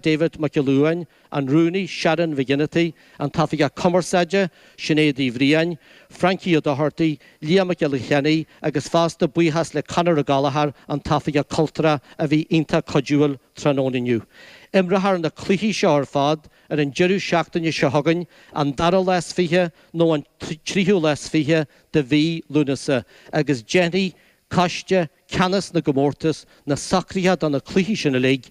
David Mac Giolla Uain, an Rúnaí, Sharon McGinty, an tOifigeach Cumarsáide, Sinéad Uí Bhriain, Frankie Ó Dochartaigh, Liam Mac Giolla Chainnigh agus fosta buíochas le Conor Ó Gallchóir, an tOifigeach Cultúrtha, a bhí iontach cuidiúil tráthnóna inniu. Imreofar na cluichí seo ar fad ar an deireadh seachtaine seo chugainn, an dara lá is fiche nó an tríú lá is fiche de mhí Lúnasa, agus déanfaidh Coiste Ceannas na gComórtas na socruithe do na cluichí sin uilig a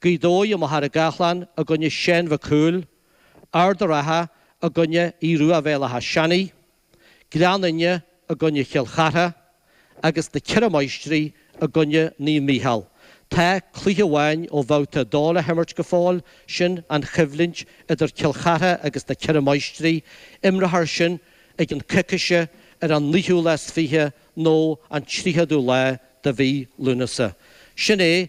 Gaoth Dobhair i Machaire Gathlán i gcoinne Sheáin Mhic Cumhaill, Ard a' Rátha i gcoinne Aodh Ruadh Bhéal Átha Seanaidh, Gleann Fhinne i gcoinne Chill Chartha, agus Na Ceithre Máistrí i gcoinne Naomh Mícheál. Tá cluiche amháin ó Bhabhta 2 le himirt go fóill, sin an choimhlint idir Cill Chartha agus Na Ceithre Máistrí, imreofar sin i gceann coicíse ar an naoú lá is fiche nó an tríochadú lá de mhí Lúnasa. Sin é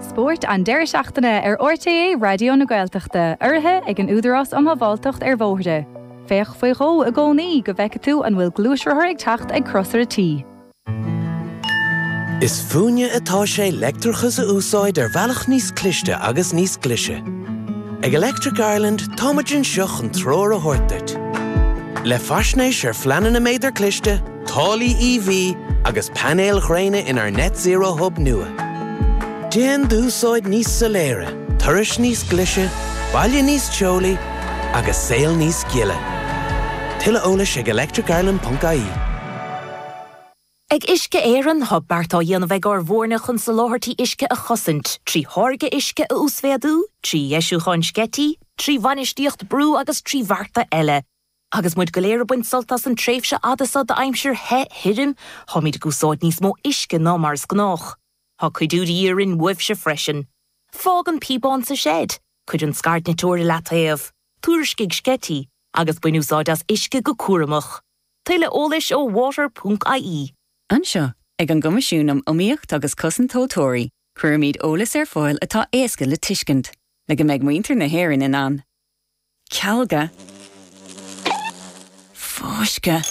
Spórt an deireadh seachtaine ar RTÉ Raidió na Gaeltachta, urraithe ag an Údarás um Shábháilteacht ar Bhóithre. Féach faoi dhó i gcónaí go bhfeicfidh tú an bhfuil gluaisrothar ag teacht ag crosaire T. Is fúinne atá sé leictreachas a úsáid ar bhealach níos cliste agus níos glise. Ag Electric Ireland táimid anseo chun treoir a thabhairt duit. Le faisnéis ar phleananna méadar cliste, Táillí EV agus painéil ghréine inár Net Zero Hub nua. Déan d'úsáid níos soiléire, turais níos glise, baile níos teolaí agus saol níos gile. Tuilleadh eolais ag electricireland.ie. Ag Uisce Éireann tá beart á dhéanamh ag ár bhfoirne chun soláthairtí uisce a chosaint, trí tháirgeadh uisce a uasmhéadú, trí dheisiúcháin sceití, trí bhainistíocht brú agus trí bhearta eile. Agus muid go léir ag baint sult as an tréimhse fhada seo d'aimsir the thirim, táimid ag úsáid níos mó uisce ná mar is gnách. Tá cuidiú de dhíth orainn uaibhse freisin. Fág an píobán sa seid, cuir an scairdniteoir i leataobh, tuairiscigh sceití, agus bain úsáid as uisce go cúramach. Tuilleadh eolais ó water ponc ie. Anseo, ag an gCoimisiún um Iomaíocht agus Cosaint Tomhaltóirí, cuirimid eolas ar fáil atá éasca le tuiscint, le go mbeidh muintir na hÉireann in ann, cealgadh, fáscadh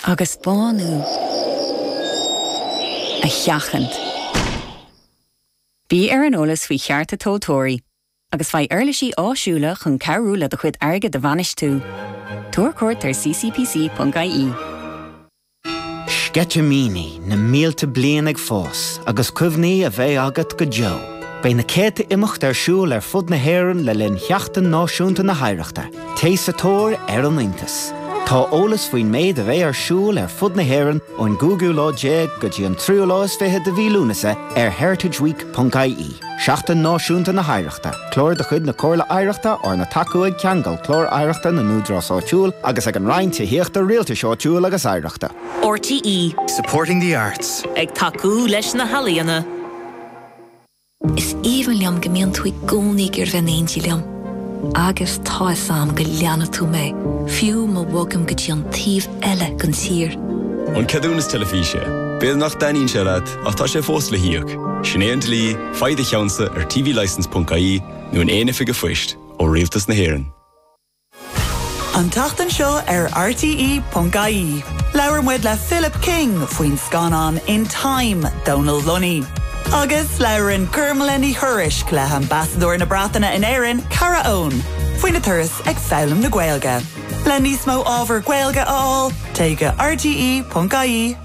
agus bánú a sheachaint. Bí ar an eolas faoi chearta tomhaltóirí agus faigh uirlisí áisiúla chun cabhrú le do chuid airgid a bhainistiú. Tabhair cuairt ar ccpc.ie. Sceitimíní na mílte bliain ag fás agus cuimhní a bheidh agat go deo. Beidh na céadta imeacht ar siúl ar fud na hÉireann le linn Sheachtain Náisiúnta na hOidhreachta. Téigh sa tóir ar an iontas. Tá eolas faoin méid a bheidh ar siúl ar fud na hÉireann ón gcúigiú lá déag go dtí an tríú lá is fiche de mhí Lúnasa ar heritageweek.ie. Seachtain Náisiúnta na hOidhreachta, Clár de chuid na Comhairle Oidhreachta arna tacú ag Ceangal, Clár Oidhreachta na nÚdarás Áitiúil, agus ag an Roinn Tithíochta, Rialtais Áitiúil agus Oidhreachta. RTÉ. Supporting the arts. Ag tacú leis na healaíona. Is aoibhinn liom go mbíonn tú i gcónaí ag iarraidh bheith in éindí liom. Agus tá fhios a'm go leanfaidh tú mé, fiú ma bhogaim go dtí an taobh eile den tír. An ceadúnas teilifíse. B'fhéidir nach dtaitníonn sé leat. Ach tá sé fós le híoc. Sin é an dlí, faigh do cheannsa ar tvlicence ponc ie nó in aon oifig a'phoist, ó Rialtas na hÉireann. An tseachtain seo ar RTÉ PONC-IE, labhair muid le Philip King faoin scannán In Time, Dónal Lunny. Agus labhrann Gormlaith Ní Thuairisg le hAmbasadóir na Breataine in Éirinn, Kara Owen, faoina turas ag foghlaim na Gaeilge. Le níos mó ábhar Gaeilge a fháil, téigh go rte.ie.